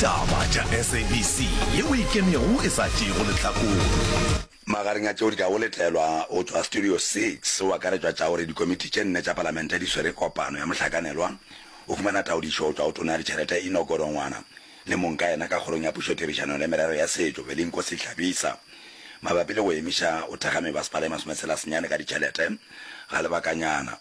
Taba tša SABC ye o e kenego e sa tšeego lehlakore. Magareng a tšeo di ka go letlelwa go tšwa Studio Six o akaretšwa tša gore dikomiti tše nne tša Palamente di swere kopano ya mohlakanelwa go fumana taodišo go tšwa go Tona ya Ditšhelete Enoch Godongwana le mong ka yena ka Kgorong ya Pušo Therišano le Merero ya Setšo Velinkosi Hlabisa mabapi le go emiša go thekga mebasepala e masometshela senyane ka ditšhelete ga lebakanyana.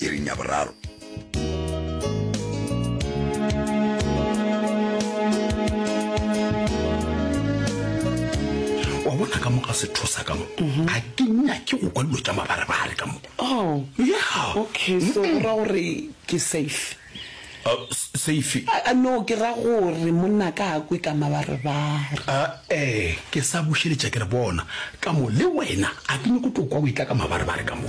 iring ya boraro. wa bona ka moka sethosa ka mo mhm. a ke nyake go kwa dilo tša mabarebare ka mo oh. ya okay so ra gore ke safe Seifi. A no, ke ra gore monna ka a kwe ka mabarebare. A ee, ke sa bušeletša ke re bona, ka mo le wena a ke nyoko tlo kwa o etla ka mabarebare ka mo.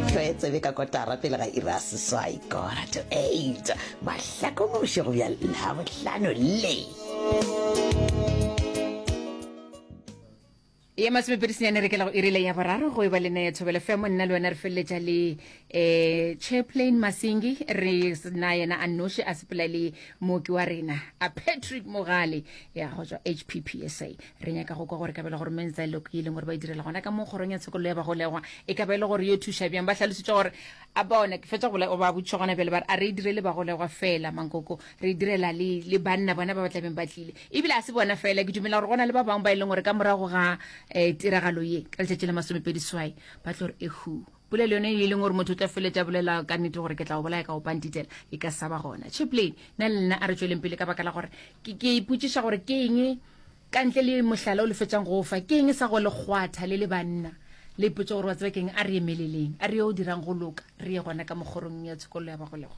Tlwae tsebe ka kotara pele ga iri ya seswai, quarter to eight, mahlakomuši go bja Labohlano le. ya masomepedi senyane re kela go irile ya boraro go e ba le neye thobele femo nna le wena re feleletša le um chairplain masingi re na yena a noši a sepela le mooki wa rena a patrick mogale ya go tswa h p p s a re nyaka go kwa gore kabela gore meng tsa loko e leng gore ba e direla gona ka mo kgorong ya tshekololo ya bagolegwa e ka ba e le gore yo thuša bjang ba tlhalositse gore a bona ke fetsa gola ba botšwa gona bjale ba re a re e direle bagolegwa fela mankoko re e direla le banna bona ba ba tlabeng ba tlile E bile ga se bona fela, ke dumela gore go na le ba bangwe ba e leng gore ka morago ga um tiragalo ye ka letšatši la masomepedi swai ba tlo re ehu polelo yone e leng gore motho o tla feletša bolela ka nnete gore ke tla go bolaya ka go pantitela e ka sa ba gona chiplane na le nna a re tsweleng pele ka baka la gore ke ipotšiša gore ke eng ka ntle le mohlala o le fetsang go fa ke eng sa go legwatha le le banna le ipotse gore wa tseba ke eng a re emeleleng a re yo o dirang go loka re ye gona ka mokgorong ya tshekololo ya bagolegwa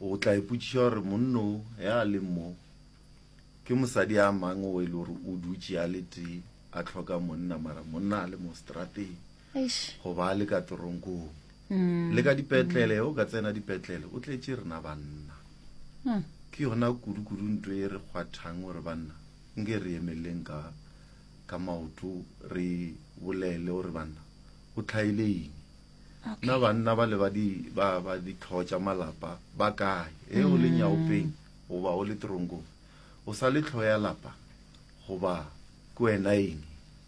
O tla ipotšiša gore monno ya a leng mo ke mosadi a mang o e le gore o dutše a le tee a tlhoka monna mara monna a le mo strateng goba a le ka toronkong mm. le ka dipetlele o ka tsena dipetlele o tletse rena banna hmm. ke yona kudu-kudu nto e re kgwathang gore banna nke re emeleleng ka ka maoto re bolele gore banna o tlhaile eng Okay. na banna ba le ba di ba ba ditlhogo tša malapa ba kae e o le mm. nyaopeng goba o le teronkong o sa le tlhogo ya lapa goba ke wena eng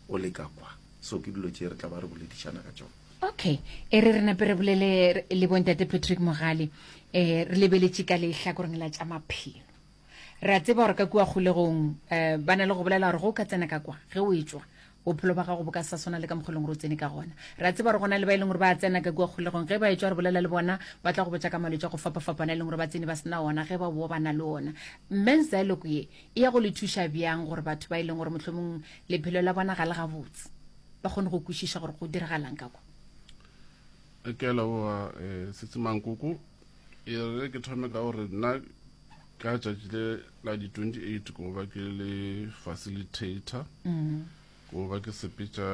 o le ka kwa so ke dilo tše re tla ba re boledišana ka tsone okay e re re nape re bolele le bontate patrick mogale um re lebeletše ka lehlakoreng la tša maphelo Re a tseba gore ka kua kgolegong um ba na le go bolela gore ge o ka tsena ka kwa ge o e tšwa bophelo ba gago bo ka sa swana le ka mokgwa e leng gore o tsene ka gona re a tseba gore go na le ba e leng gore ba a tsena ka kua kgolegong ge ba e tšwa re bolela le bona ba tla go botša ka malwetse a go fapafapana e leng gore ba tsene ba sena ona ge ba boa ba na le ona mme ziloko ye e ya go le thuša bjang gore batho ba e leng gore mohlomong lephelo la bona ga le gabotse ba kgone go kwešiša gore go diragalang ka kwa ke a leboga eh, setsemankoko E re ke thome ka gore nna ka tšatši le la di-28 ko ba ke le facilitator mm. ko ba ke sepetša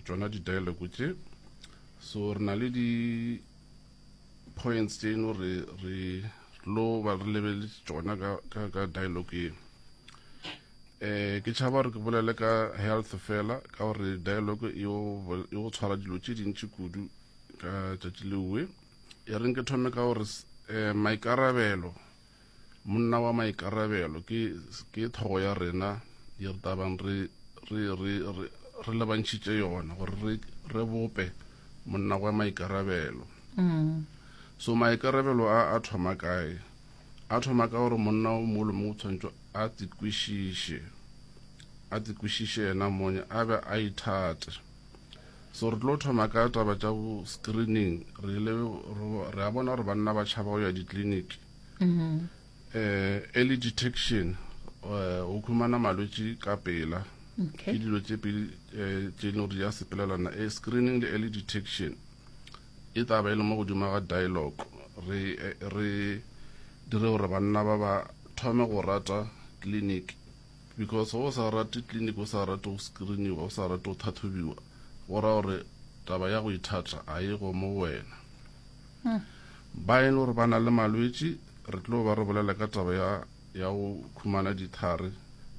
tšona di-dialogue tše so re na le di points tše eno re re lo ba re lebele tsona ka ka ka dialogue e eh ke tshaba re ke bolele ka health fela ka gore dialogue e o tshwara dilo tše dintši kudu ka tšatši lewe e reng ke thome ka gore um maikarabelo monna wa maikarabelo ke thogo ya rena ye re tabang re re lebantšhitše yona gore re bope monna wa maikarabelo mm. so maikarabelo a a thoma kae a thoma ka gore monna o molo mo o tshwanetse a tsekwešiše a tsekwešiše yena mone a be a ithate So re tlo thoma ka taba tša bo screening re ile re a bona gore banna ba tšhaba go ya ditleliniki mm-hmm. eh early detection eh, o khumana malwetši ka pela ke dilo tše pele eh, tše leng gore di a sepelelana eh, screening le early detection e taba e le mo godimo ga dialogue re eh, re dire gore banna ba ba thome go rata clinic Because ge o sa rate clinic, o sa rate go screeniwa, o sa rate go thathobiwa, go ra gore taba ya go ithata a e go mo go wena. Ba e le gore ba na le malwetši, re tlo ba re bolela ka taba ya ya go khumana dithare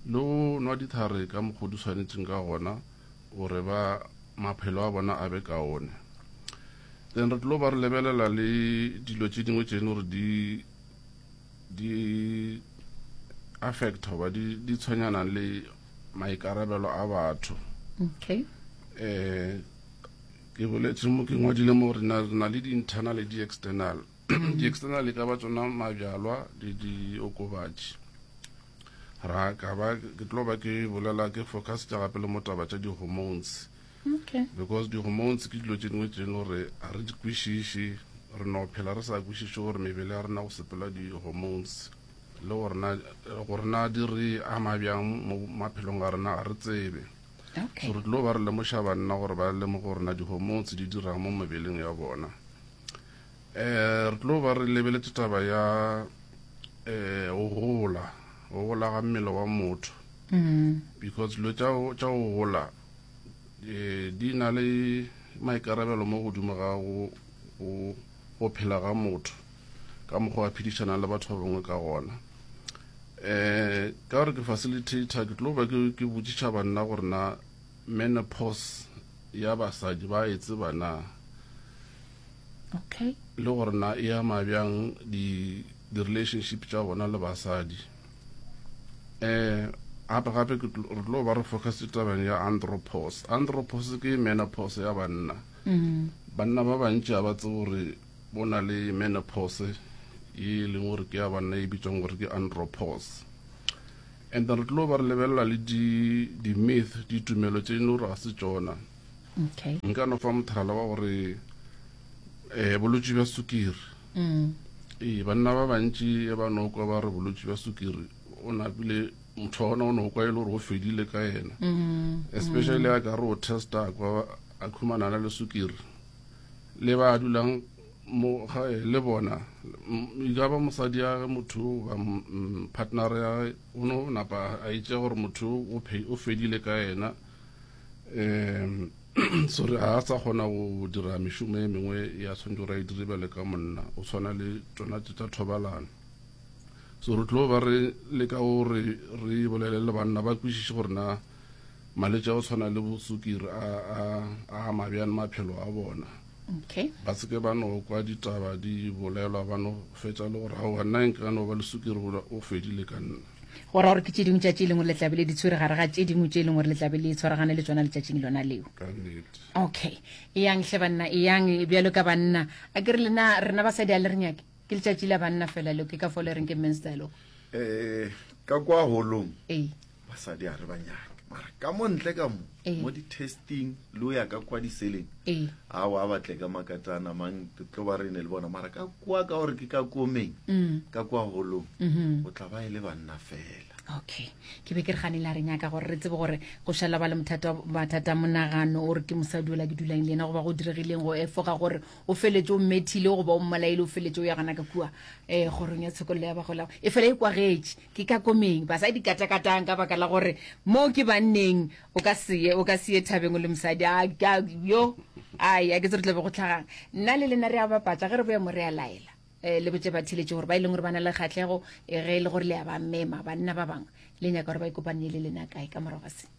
le go nwa dithare ka mokgo di swanetšeng ka gona gore ba maphelo a bona a be kaone. Then re tlo ba re lebelela le dilo tše dingwe tše e le gore di di affect hoba di, di tshwenyana le maikarabelo a batho okay eh ke boletse mo ke ngwadile mo re na le di-internal le di-external mm. di-external e ka ba tsona mabjalwa le diokobatši ra ka ba ke tlo ba ke bolela ke focus tša gape le mo taba tša di-hormones Okay. Because di-hormones ke dilo tše dingwe tše no re ga re di kwešiše re no phela re sa kwešiše gore mebele ya rena go sepela di-hormones le gorena gorena di re ama bjang mo maphelong a rena ga re tsebe okay. so re tlilo ba re lemoša banna gore ba lemoge gorena di-hormones di dirang mo mebeleng ya bona um re tlilo ba re lebeletse taba ya um go gola go gola ga mmele wa motho mm. because dilo tša go gola di na le maikarabelo mo godimo ga go go go phela ga motho ka mokgwa a phedišanang le batho ba bangwe ka gona um ka gore ke facilitator ke tlo ba ke botšiša banna gore na menopause ya basadi ba e tseba na okay le gore na e ama bjang di-relationship tša bona le basadi um gape gape re tlo ba re focus tabeng ya andropos andropos ke menopos ya banna mm. banna ba bantši ga ba tse gore bo na le menopos e e leng gore ke ya banna e bitswang gore ke andropos and re tlo ba re lebelela le di-myth ditumelo tse e leng gore ga se tsona nka no fa mothalala wa gore um bolwetse bja sukiri ee banna ba bantši e ba no kwa ba re bolwetši bja sukiri o napile motho wa gona o no kwa e le gore o fedile ka yena especially a ka re o testa kwa a khumanana le sukiri le ba dulang mo gae le bona e ka ba mosadi ya ge motho ba mm, partner ya ge o no napa a itše gore motho o fedile ka yena um Sorry, ga a sa kgona go dira mešomo e mengwe ya tshwanetse gore a e dire bjale ka monna, o tshwana le tsona tse tsa thobalano. So re tlo ba re leka gore re bolele le banna ba kwešiše gore na malwetse a go tshwana le bosukiri a a ama bjang maphelo a bona okay ba se ke ba no kwa ditaba di bolelwa ba no fetsa le gore ga wa nna nka no ba le sukiri o fedile ka nna go ra gore ke tše dingwe tšatši e leng gore le tlabe le di tshwere gare ga tše dingwe tše e leng gore le tlabe le tshwaragane le tsona letšatšing lona leo okay eyang hle banna eyang bjalo ka banna a ke re lena rena basadi a le re nyake ke letšatši la banna fela leo ke ka fo le reng ke mens dialog um eh, ka kwa golong basadi a re ba nyake mara ka mo ntle ka mo Ee. mo di-testing le o ya ka kwa diseleng Ee. a wa batle ka makatana mang re tlo ba re ne le bona mara ka kwa ka gore ke ka komeng Mm. ka kwa holong Mhm. o tla ba e le banna fela okay ke be ke re gane la re nyaka gore re tsebe gore go šala ba le mothata mathata a monagano o re ke mosadi ola ke dulang le ena goba go diregileng go efoga gore o feletse o mmethile goba o mmolaele o feletse o ya gana ka kua um kgorong ya tshekololo ya bagolago e fela e kwagetše Ke ka komeng basadi di katakatang ka baka la gore moo ke banneng o ka seye o ka seye thabeng o le mosadi a ka yo ai a ke tse re tlabe go tlhagang nna le lena re a bapatsa ge re boya mo re a laela eh le botse ba theletše gore ba e leng gore ba na le kgatlhego eh, ge e le gore le ya ba mema banna ba bangwe le nyaka gore ba ikopanye le lena kae ka morago ga se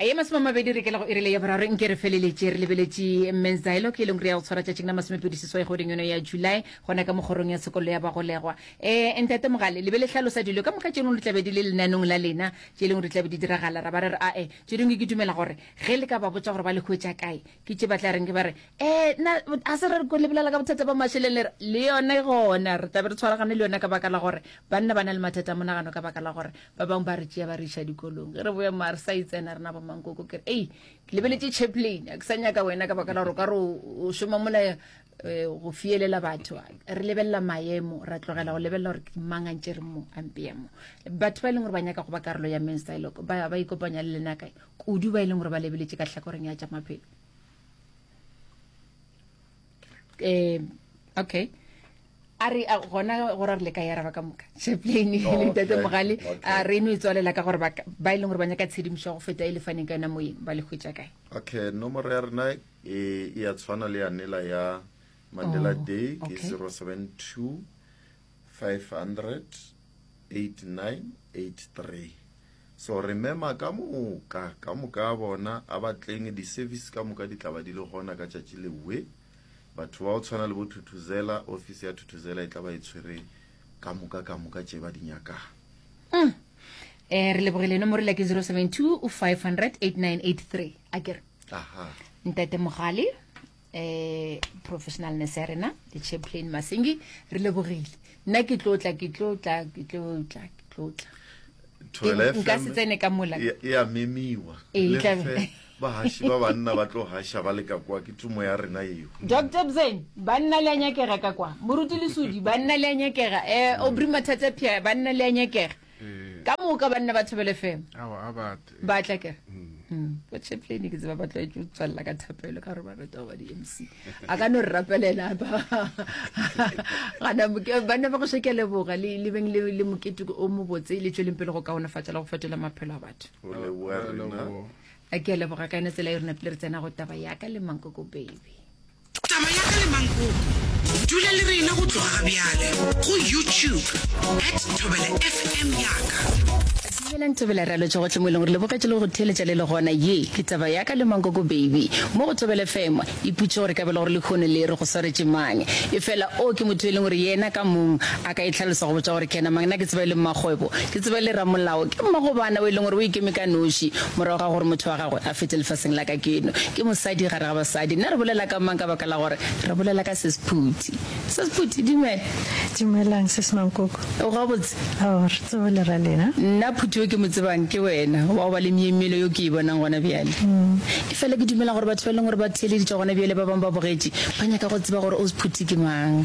A ye masome a mabedi re ke la go irele ya boraro nke re feleletše re lebeletše Men's Dialogue e leng re ya go tshwara tšatšing la masomepedi seswai goding yone ya July gona ka mokgorong ya tshekollo ya bagolegwa. Eh, Ntate Mogale, le be le hlalosa dilo ka moka tše dingwe di tla be di le lenanong la lena, tše dingwe di tla be di diragala. Ra ba re re, Ae, tše dingwe ke dumela gore ge le ka ba botša gore ba le hwetša kae, ke tše ba tla reng ke ba re um na a se re ko lebelela ka bothata ba mašeleng le re le yone gona re tlabe re tshwaragane le yone ka baka la gore banna ba na le mathata a monagano ka baka la gore ba bangwe ba re tšea ba re iša dikolong ge re boya moa re sa itsena rena ba mankoko ke re ei ke lebeletse chaplain a ke sa nyaka wena ka baka la gore o ka re o šoma mola eh, go fielela batho re lebelela maemo ra tlogela go lebelela gore ke mang a ntše re mo ampeya mo batho ba e leng gore ba nyaka go ba karolo ya menstyloko ba ba ikopanya le lena kae kudu ba e leng gore ba lebeletše ka tlhakoreng ya tša maphelo um okay a re gona gore re le ka yaraba ka moka chaplaine oh, le tate mogale a re no e tswalela ka gore ba e leng gore ba nyaka tshedimošo go feta e le faneng ka yona moyeng ba le hwetša kae okay nomoro ya rena e, e ya tshwana le yanela ya mandela oh, day ke 072 58983 so re mema ka moka ka moka a bona a batleng di service ka moka di tlaba di le gona ka tšatši le we batho ba o tshwana le bo thuthuzela office ya thuthuzela e tlaba e tshwere ka moka ka moka tše ba di nyakang mm. eh re lebogile eno morela ke 072 500 8983 akere aha ntate mogale eh professional ne se rena le chaplain masengi re le bogile nna ke tlotla ke tlotla ke tlotla ke tlotla nka se tsene ka mola ya memiwa e tla ba hashi ba banna ba tlo hasha ba le ka kwa ke tumo ya rena eo doctor bzen banna le nyakega ka kwa moruti le sudi banna le nyakega eh obri mathatsa pia banna le nyakega Eh. ka moka banna ba thobele fema ba tla kere bochaplane mm. mm. ke tseba ba tlwaetse go tswalela ka thapelo ka gore ba rata go ba di-m c a ka no re rapelela gana banna ba go sheke leboga le beng le mokete o mobotse le tsweleng pele go kaonefatsa le go fetola maphelo a batho a ke a leboga ka ene tsela e rona pele re tsena go taba yaka le mankoko baby Taba ya ga Lemangkoko. Dula le rena go tloga ga bjale go YouTube at Thobela FM yaka. Dumelang Thobela re a lotšha gohle mo e leng gore le bogetše le go theeletša le le gona. Ye ke taba ya ka Lemangkoko baby mo go Thobela FM. Iputše gore e ka be le gore lekhono le re go swaretše mang. Efela o ke motho e leng gore yena ka mong a ka e hlalosa go botša gore ke yena mang. Nna ke tseba e le mmakgwebo, ke tseba e le ramolao, ke mmagobana o e leng gore o ikeme ka noši morago ga gore motho wa Gagwe a fete lefaseng la kakeno. Ke mosadi gare ga basadi. Nna re bolela ka mang ka baka la gore re bolela ka Sesephuti? Sesephuti, dumela. Dumelang, Sis Mankoko. O gabotse? Oh, re tsebo le ra lena. Nna Phuti yo ke mo tsebang ke wena, wa go ba le myemyelo yo ke e bonang gona bjale. Efela ke dumela gore batho ba e leng gore ba theeleditšwe gona bjale ba bangwe ba bogetše, ba nyaka go tseba gore Osphuti ke mang.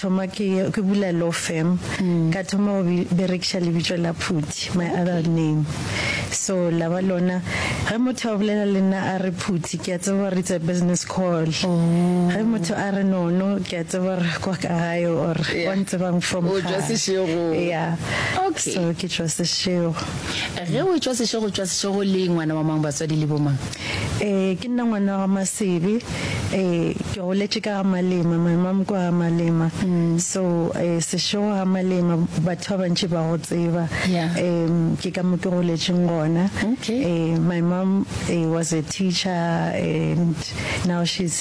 thoma ke ke bula law firm ka thoma go berekiša lebitso la phuthi my other name so la ba lona ge motho a bolela le nna a re phuthi ke a tseba gore it's a business call ge motho a re nono ke a tseba gore kwa ka gae or Yeah. wa ntsebang from O tšwa gae. sešegong. yeah Okay. so ke tšwa sešego ge o tšwa sešego tšwa sešego le ngwana wa mang batswadi le bomang Ee, ke nna ngwana wa ga Masebe. Ee, ke goletše ka ga Malema, my mom kwa ga Malema. Mm. So, eh, sešego ga Malema, batho ba bantši ba go tseba. Yeah. Um, ke ka mo ke goletšeng gona. Okay. Eh, my mom eh, was a teacher and now she's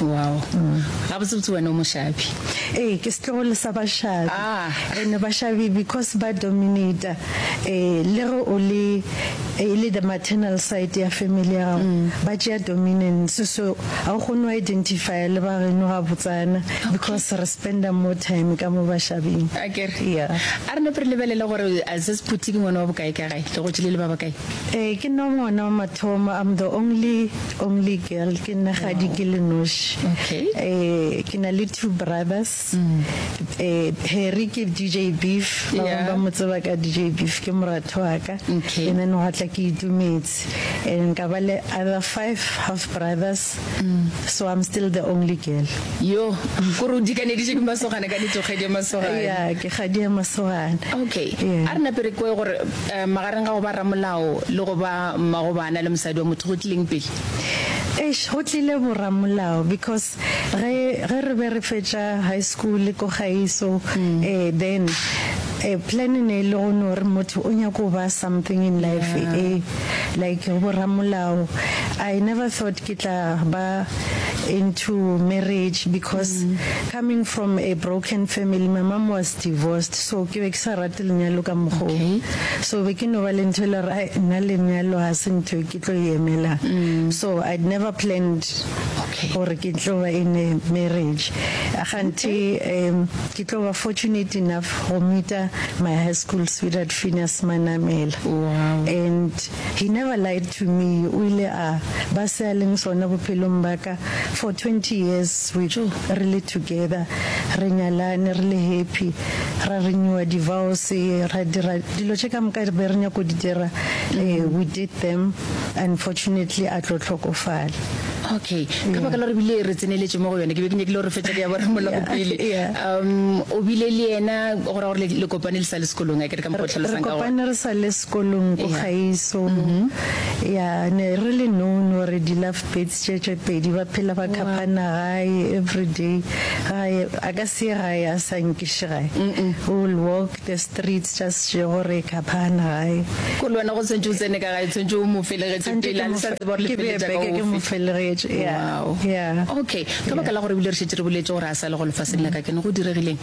Wow. Gabotsebotse wena o mošabi. Ee, ke setlogolo sa bašabi. Ah. And bašabi because ba dominator eh le ge o le e le the maternal side ya family ya gago mm. ba tšea dominance so ga o kgone go identifya le ba geno ga botsana because re spenda more time ka mo bašabing a kere yeah a re nepe re lebelele gore a se se phuthi ke ngwana wa bokae ka gae le go tšile le ba bakae eh ke nna ngwana wa mathomo i'm the only Only girl, ke nna gadi ke le noši. Okay. Eh, ke na le two brothers. Eh, Harry ke DJ Beef, ba bang Yeah. ba mo tseba ka DJ Beef, ke moratho wa ka. Okay. And then gwa tla ke itumetse. And ka ba le other five half brothers. So I'm still the only girl. Yo, kore o dikaneditše ke masogana ka nete o kgedi ya masogana. Yeah, ke gadi ya masogana. Okay. Yeah. A re nape re kwe gore Ee, magareng ga go ba ramolao le go ba mmagobana le mosadi wa motho go tlileng pele? Eish, go tlile boramolao because ge ge re be re fetša high school ko gaeso eh, then eh, plan e ne e le go no re motho o nyako ba something in life eh, like boramolao. I never thought ke tla ba into marriage because coming from a broken family, my mom was Divorced so ke be ke sa rate lenyalo ka mokgo o. So be ke no ba le ntho e le gore ai nna lenyalo ga se ntho e ke tlo e emelang. So I'd never planned gore ke tlo ba in a marriage. Kganthe um ke tlo ba fortunate enough go meet-a my high school sweetheart Phineas Manamela and He never lied to me, o ile a ba se a leng sona bophelong ba ka for twenty years we re le together, re nyalane re le happy, ra renewer divorce, ra dira dilo tše ka moka re be re nyako di dira, we did them, unfortunately a tlo hlokofala. Okay, ka baka la gore ebile re tseneletše mo go yone, ke be ke nyakile gore re fetše ka ya borra molago pele. Um, o bile le yena, go ra gore le kopane le sa le sekolong akere ka mokgwa o tlhalosang ka gona? Re kopane re sa le. Kolong ko Kgaiso, ya ne re le known gore di love birds tše tše pedi ba phela ba khapana gae everyday gae a ka se ye gae a sa nkiše gae we will walk the streets just še gore e khaphana gae. Ko le wena go tshwantše o tsene ka gae tshwantše o mo felegetše pele a le sa tseba gore le feletša ka ofe. Ke mo felegetše ya ya. Okay ka baka la gore ebile re šetše re boletše gore a sa le go lefaseng la ka ke ne go diregileng?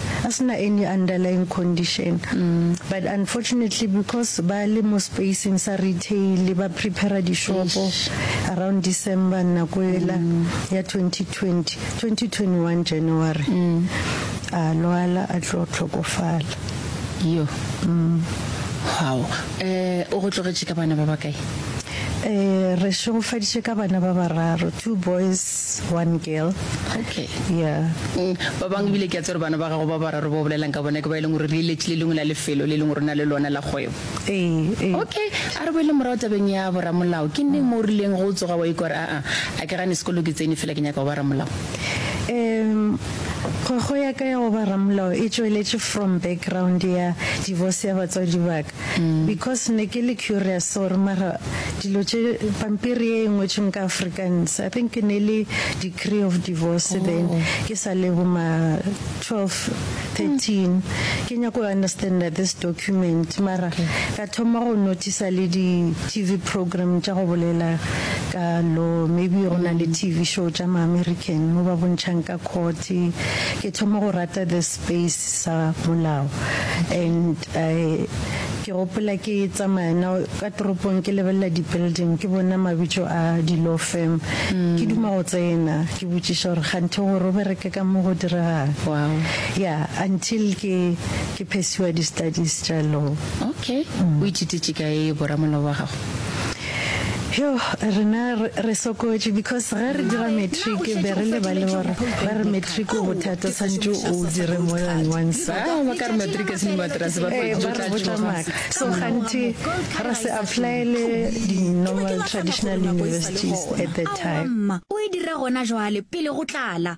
a se na any underlying condition but unfortunately because ba le mo spacing sa retail ba prepare dishopo around December nako ela ya 2020 2021 January a lwala a tlo tlhokofala yo hao eh o go tlogetše ka bana ba bakae Eh, re šegofaditše ka bana ba bararo, two boys one girl okay yeah mm, ba bang ebile ke a tsere bana ba gago ba bararo ba bolelang ka bona ke ba e leng gore re eletše le lengwe la lefelo le e leng gore na le lona la kgwebo ee ee okay a re boele morago tabeng ya boramolao ke neng mo o rileng go tsoga wa ikwa re aa a ke gane sekolo ke tsene fela ke nyaka go ba ramolao um kgwego ya ka ya go ba ramolao e tšweletše from background ya divorce ya batswadi baka because ne ke le curious gore mara dilo tše pampiri ye e ngwetšweng ka Afrikaans I think ke ne le decree of divorce oh. then ke sa le bo ma 12 13 ke nyako go understand that this document mara ka thoma go notice le di TV program tša go bolela ka law maybe go na le TV show tša ma American mo ba bontšhang ka court ke thoma go rata this face sa molao and I ke gopola ke tsamaya na ka toropong ke lebelela di building ke bona mabitso a di law firm mm. ke duma go tsena ke botšiša gore ganthe gore o bereke ka mo go diregang wow. yeah until ke ke phesiwa di studies tša law okay mm. o itšititše ka e boramolao wa gago Yo, rena re sokotše because ge re dira matric be re le ba le gore ba re matric o bothata santse o dire more than one sa ah, ba ka re matric se ne matrase ba eh, ba re botla maaka so ganthe ra se applyele di-normal traditional universities at that time o e dira gona jwale pele go tlala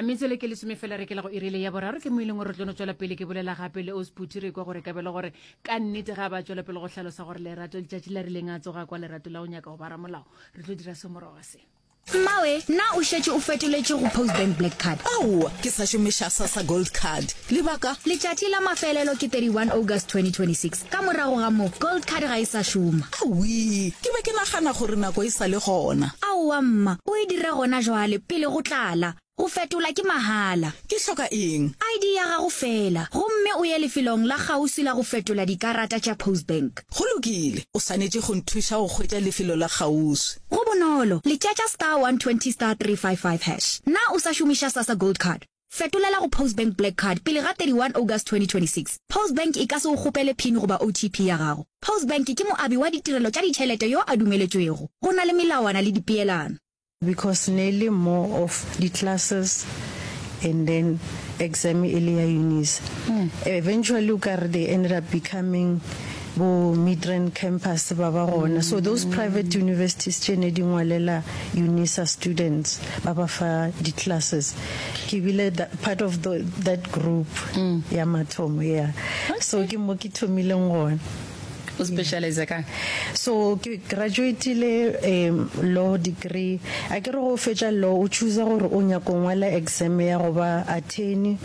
metsele ke lesome fela re kela go irile ya boraro ke moileng gore tlono tswela pele ke bolela gape le osputi re kwa gore kabelo gore ka nnete ga ba tswela pele go hlalosa gore lerato letšatši la rileng a tsoga kwa lerato la go nyaka go bara molao re tlo dira semoroga se mmawe na o šetše o fetoletše go post bank black card ao ke sa šomiša sasa gold card lebaka letšatši la mafelelo ke 31 august 2026 Ka morago ga moo, Gold Card ga e sa šoma. Awii! Ke be ke nagana gore nako e sa le gona. Aowa, mma. O e dira gona jwale, pele go tlala. Go fetola ke mahala. Ke hloka eng? ID ya gago feela, gomme o ye lefelong la kgauswi la go fetola dikarata tša Postbank. Go lokile. O swanetše go nthuša go hwetša lefelo la kgauswi. Go bonolo. Letšatša star 120 star 355 hash. Na o sa šomiša Sasa Gold Card? Fetolela go Postbank Black Card pele ga 31 August 2026. Postbank e ka se go kgopele pin goba OTP ya gago. Postbank ke moabi wa ditirelo tša ditšhelete yo a dumeletšwego. Go na le melawana le dipeelano. Because ne le more of di classes and then exam e le ya unis. Eventually o ka re they ended up becoming bo Midrand campus ba ba gona. So those private universities tše ne di ngwalela Unisa students ba ba fa di classes. ke bile part of the, that group mm. ya mathomo yeah okay. so ke mo ke thomileng gone o specialize ka so ke graduatile um law degree a ke re go fetša law o choose gore o nyako ngwala exam ya go ba attorney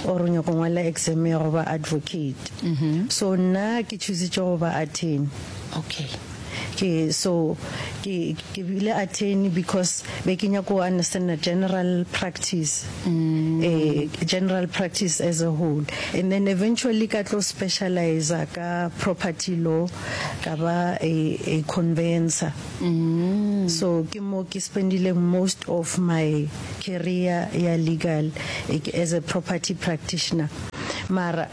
or o nyako ngwala exam ya go ba advocate mm-hmm. so nna ke choositše go ba attorney okay ke so ke ke bile attorney because be ke nyako go understand general practice mm. eh, general practice as a whole and then eventually ka tlo specialize ka property law ka ba a, a conveyancer mm. so ke mo ke spendile most of my career ya legal eh, as a property practitioner mara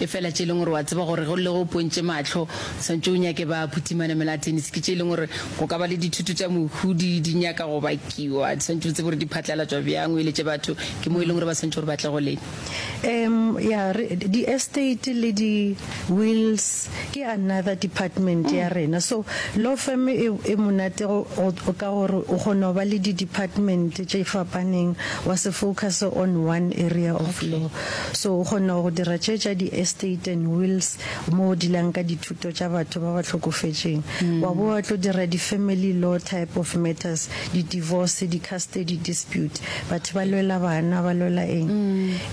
Efela tše e leng gore o a tseba gore ge o lle go pontše mahlo, o swanetše o nyake ba phuthi manamela a tennis. Ke tše e leng gore go ka ba le dithuto tša mohu di, di nyaka go bakiwa. Di swanetše o tsebe gore di phatlalatšwa bjang, o eletše batho ke mo e leng gore ba swanetše gore ba tle go lena. Em, ya re, di-estate le di-wills ke another department ya rena. So, law firm e, e monate go, go, ka gore o kgona go ba le di-department tše fapaneng, wa se focuse on one area of law. So o kgonne go dira tše tša di estate and wills mo o dilang ka dithuto tša batho ba ba hlokofetšeng, wa bo wa tlo dira di family law type of matters, di divorce, di custody dispute, batho ba lwela bana, ba lwela eng.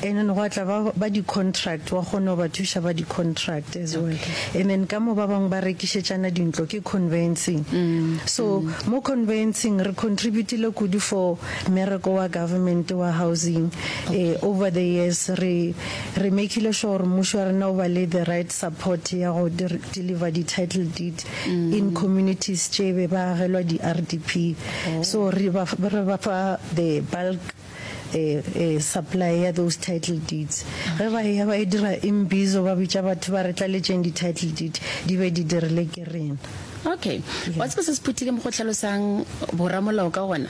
And then gwa tla ba ba di contract, wa kgona go ba thuša ba di contract as well. And then ka mo ba bangwe ba rekišetšana dintlo ke conveyancing. So mo conveyancing re contributile kudu for Mmereko wa government wa housing e over the years re re makile sure gore mmušo wa rena o ba le the right support ya go deliver di title deed in communities tše be ba agelwa di RDP so re ba re ba fa the bulk supply ya those title deeds ge ba ya ba e dira imbizo ba bitša batho ba re tlaletšeng di title deed di be di dirile ke rena. Okay. Wa tseba se se phuthile mo go tlhalosang boramolao ka gona?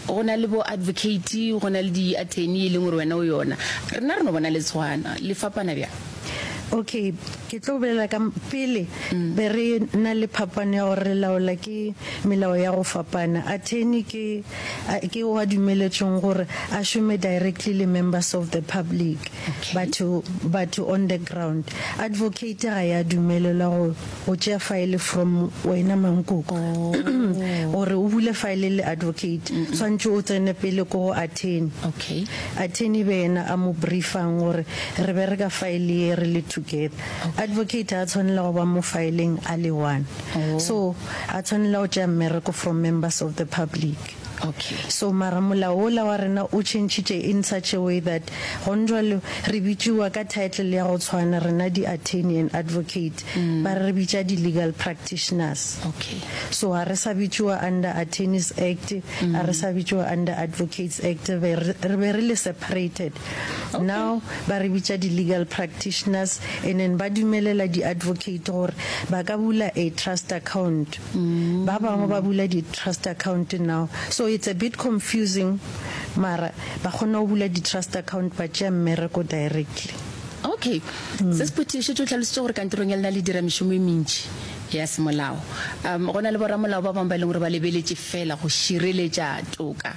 go na le bo advocate go na le di-attorney e leng gore wena o yona rena re no bona le tshwana le fapana bjang okay ke tlo bolela ka pele mm. be re na le phapano ya gore re laola ke melao ya go fapana attorney ke ke wa dumeletsweng gore a šome directly le members of the public batho batho on the ground advocate ga ya dumelelwa go go tšea file from wena mankoko gore o bule file le advocate tshwantse o tsene pele ko go attorney Okay. attorney be yena a mo briefang gore re bereka file ye re le together advocate a tshwanela go ba mo fileng a le one so a tshwanela go tšea mmereko from members of the public Okay, so mara molao wola wa rena o tšhentšhitše in such a way that gonjwalo re bitšiwa ka title ya go tshwana rena di attorney and advocate, ba re bitša di legal practitioners. Okay. So ga re sa bitšiwa under Attorneys Act, ga re sa bitšiwa under Advocates Act, re be re le separated. Now ba re bitša di legal practitioners and then ba dumelela di advocate gore ba ka bula a trust account. Ba bangwe ba bula di-trust account now, so it's a bit confusing mara ba kgona go bula di-trust account ba tšea mmereko directly. Okay. Mm. Se sephuthi šetše o tlhalositše gore kantorong ya lena le dira mešomo e mentši ya semolao. Um go na le boramolao ba bangwe ba e leng gore ba lebeletše fela go šireletša toka.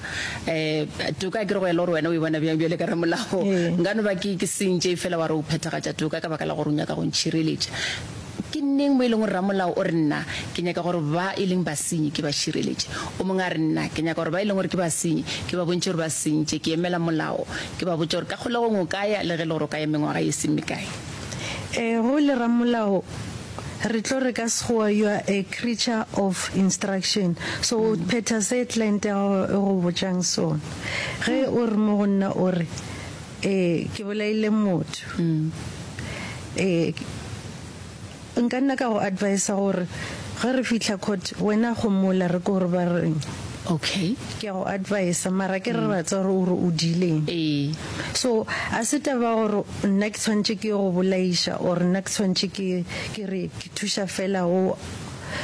Eh toka ke re go ya le gore wena o e bona bjang bjale ka ramolao. Ee. Nka no ba ke ke sentše fela wa re o phethagatša toka ka baka la gore o nyaka go ntšhireletša. Ke neng mo e lego ramolao o re, Nna ke nyaka gore ba e leng basenyi ke ba šireletše? O mongwe a re, Nna ke nyaka gore ba e leng gore ke basenyi ke ba bontšhe gore ba sentše, ke emela molao, ke ba botše gore ka kgolegong o ka ya le ge e le gore o ka ya mengwaga ye e seng mekae. Ee, go le ramolao re tlo re ka Sekgowa you are a creature of instruction, so o phetha se client ya gago e go botšang sona. Ge o re mo go nna o re, Ee, ke bolaile motho. Ee, nka nna ka go advisa gore ge re fihla court wena gomola re ko gore ba reng. Okay. Ke a go advisa mara ke re ra tsa gore o re o diileng. Ee. So a se taba gore nna ke tshwantše ke go bolaiša or nna ke tshwantše ke ke re ke thuša fela o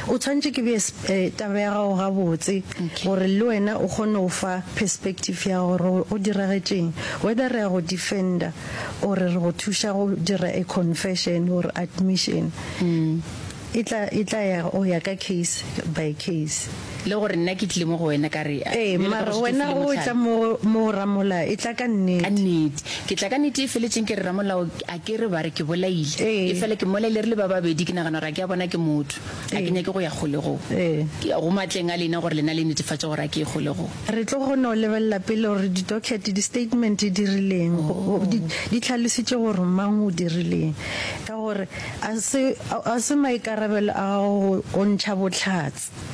O tshwanetše ke bee taba ya gago gabotse gore le wena o kgone go fa perspective ya gago gore go diragetšeng, whether re ya go defender or re go thuša go dira a confession or admission. E tla ya go ya ka case by case. Le gore nna ke tlile mo go wena ka re, Ee, bjale ka mara gešo ke wena filwe o mohlala. etla mo go, mo go Ramola, etla ka Ka nnete. nnete. Ke tla ka nnete e feletšeng, ke re Ramolao, a ke re ba re ke bolaile. Ee. Efela ke mmolaile re le ba babedi, ke nagana gore a ke a bona ke motho. A ke Ee. nyake go ya kgolegong. Ee. Ke ya go matleng a lena gore lena le netefatše gore a ke ye kgolegong. Re tlo kgona go lebelela pele gore di-docket, di-statement di rileng, go- go- di, di tlhalositše gore mang o dirileng. Ka gore a se, a, a se maikarabelo a gago go, go ntšha bohlatse.